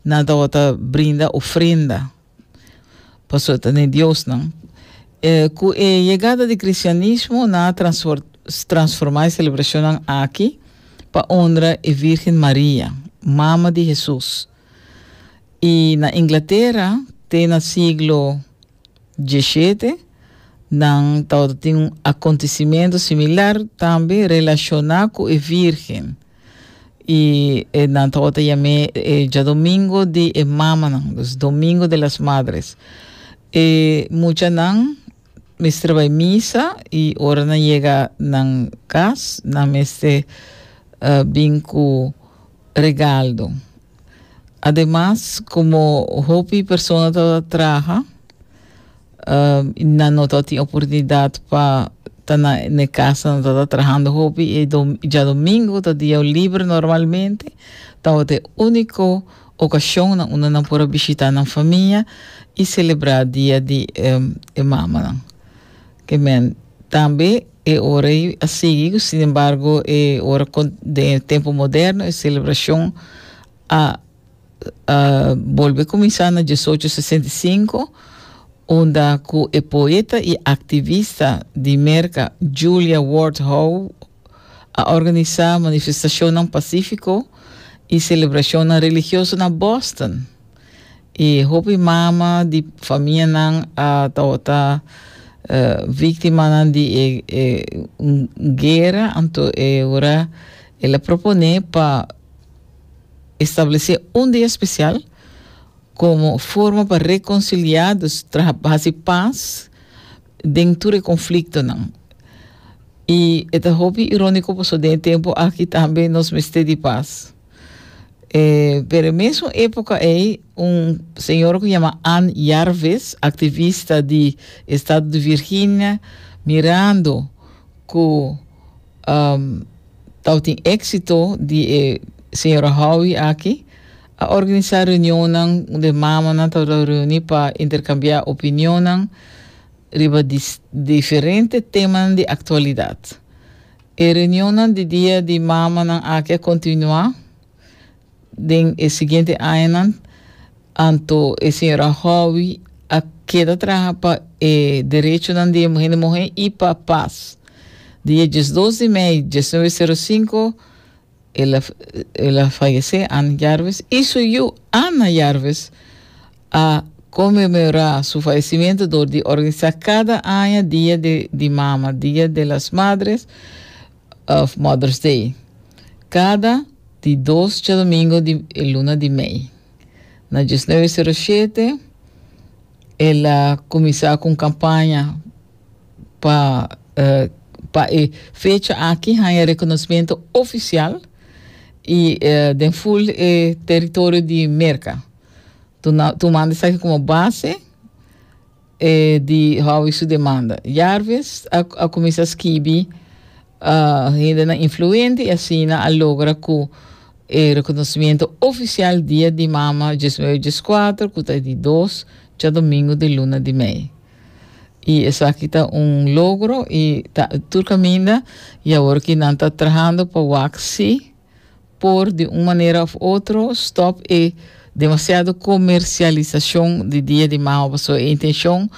Nan tabata brinda ofrenda pa su atende diosnan. E cu e yegada di cristianismo nan a transforma e celebracionnan aki pa honra e Virgen Maria, mama di Jesus. Y na Inglaterra te na siglo diesshete nan tabata tin un acontecimento similar tambe relaciona cu e Virgen. I e nan tabata ta yam'é e djadomingo di e mamanan, dus Domingo de las Madres. E muchanan mester bai misa i ora nan yega nan kas nan mester uh, bin ku regaldo. Ademas, komo hopi persona tabata traha, Nan no ta tin oportunidat pa ta na e kasa, no ta ta trahando hopi. E djadomingo ta dia liber normalmente, tabata e úniko okashonnan unda nan por a bishitá nan famia i selebrá dia di e mamanan. Ke men tambe e ora ei a sigui ku sinembargo e ora den e tempu moderno e selebrashon a a bolbe kuminsá na diesocho sesenta i sinku, unda ku e poeta i aktivista di Merka Julia Ward Howe a organisá manifestashonnan pasífiko i selebrashonnan religioso na Boston. I hopi mama di famianan a tabata víktimanan di e gera, anto e ora el a proponé pa. Establesé un dia spesial komo forma pa rekonsiliá, dus traha pa hasi pas den tur e konfliktonan. I e ta hopi iróniko pasobra den e tempu aki tambe nos mester di pas. E pero e mesun époka ei un señora ku yama Ann Jarvis, aktivista di estado di Virginia, mirando ku, tau tin éxito di e señora Howie aki, a organisá reunionnan un de mamanan tau ta reuní pa interkambiá opinionnan riba di diferente temanan di aktualidat. E reunionnan di dia di mamanan aki a kontinuá. Den e siguiente añanan anto e señora Howie a keda traha pa e derechonan di e muhé di muhé i pa pas. Di e diesdos di mei dieznuebe sero sinku el a el a fayesé, Ann Jarvis, i su yu Anna Jarvis a konmemorá su fayesimentu dor di organisá kada aña dia di di mama, Dia de las Madres, of Mother's Day, kada di dos tjadomingo di e luna di mei. Na diesnueve sero shete el a kuminsá ku un kampaña pa pa e fecha aki haña rekonosmentu ofisial i den ful e teritorio di Merka, tumando esaki komo base. E di Howie su demanda. Jarvis a, a kuminsá skibi uh, hindenan influente i asina a logra ku e rekonosimiento ofisial Dia di Mama dies nueve dies kuater ku ta di dos cha domingo di luna di mei. I esaki ta un logro i ta tur kaminda i awor ki nan ta trahando pa wak si por di un manera of otro stop e demasiado comercialisacion di Dia di Mama paso e intencion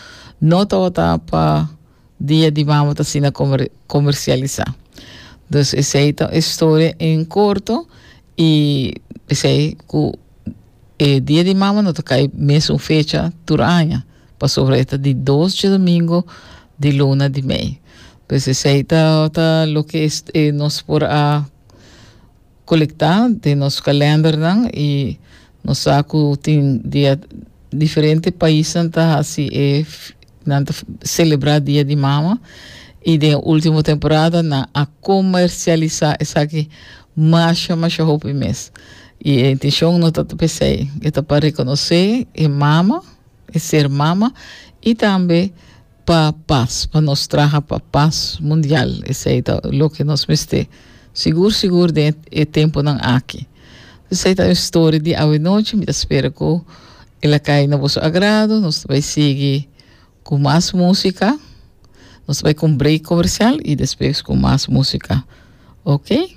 no tabata pa Dia di Mama ta asina comer comercialisa. Dus esey ta e storia en corto y esey cu e Dia di Mama no ta cay mes un fecha tur aña pasobra e ta di dos dje domingo di luna di mei. Pues esei ta ta loke nos por a kolektá den nos kalendernan i nos sa ku tin dia diferente paisnan ta hasi e nan ta selebrá dia di mama i den e último temporada nan a komersialisá esaki masha masha hopi mes i e intenshon no ta ta pa esei e ta pa rekonosé e mama e ser mama i tambe Pa pas, pa nos traha pa pas mundial, esei ta loke nos mester sigur sigur den e tempunan aki. Esei ta un story di awenochi, mi ta spera ku el a kai na boso agrado. Nos ta bai sigui ku mas músika, nos ta bai ku un break komersial i despues ku mas músika, oke.